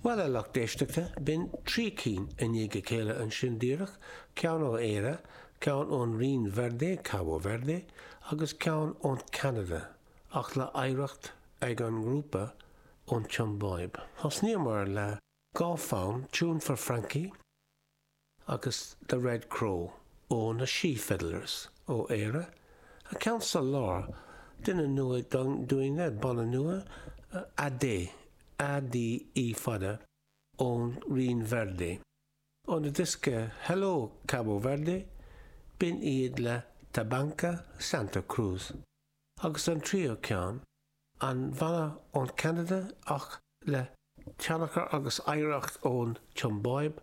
Bhuel, a lucht éisteachta, b'in trí cinn i ndiaidh a chéile ansin díreach, ceann ó Éire, ceann ón Rinn Verde, Cabo Verde, agus ceann ón Ceanada, ach le hoidhreacht ag an ngrúpa ón tSiombáib. Thosnaíomar le dhá fonn, Tune for Frankie, agus The Red Crow ó na She Fiddlers ó Éire, an ceann sa lár, duine nua dúinne, banna nua, Ade, A-D-E fada, ón Rinn Verde. Óna diosca Hello, Cabo Verde, b'in iad le Tabanka, Santa Cruz, agus an tríú ceann, an banna ón Ceanada ach le tionchar agus oidhreacht ón tSiombáib,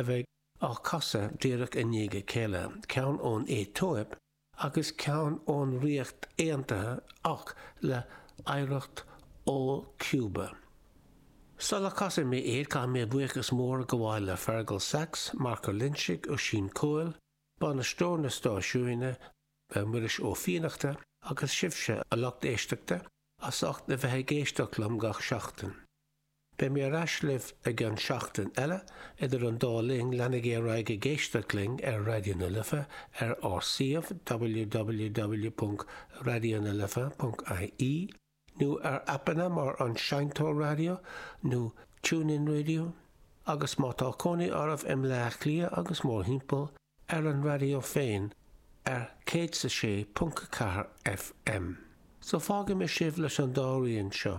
a bheidh á casadh díreach i ndiaidh a chéile, ceann ón Aetóip agus ceann ón Ríocht Aontaithe ach le hoidhreacht ó Cuba. Sula casfaidh mé iad, caithfidh mé buíochas mór a ghabháil le Fergal Sachs, Marc Ó Loingsigh, Oisín Cóil, bainisteoir na stáisiúine, le Muiris Ó Fiannachta agus sibhse, a lucht éisteachta, as ucht a bheith ag éisteacht liom gach seachtain. Beidh mé ar ais libh an tseachtain seo, idir an dá linn leanaigí ar aghaidh ag éisteacht linn ar Raidió na Life ar ár suíomh www.raidionalife.ie nó ar aipeanna mar An Seinnteoir Raidió nó TuneIn Radio agus má tá cónaí oraibh i mBleá Cliath agus mórthimpeall, ar an raidió féin ar 106.4 FM. So fágfaidh mé sibh leis an dá rian seo.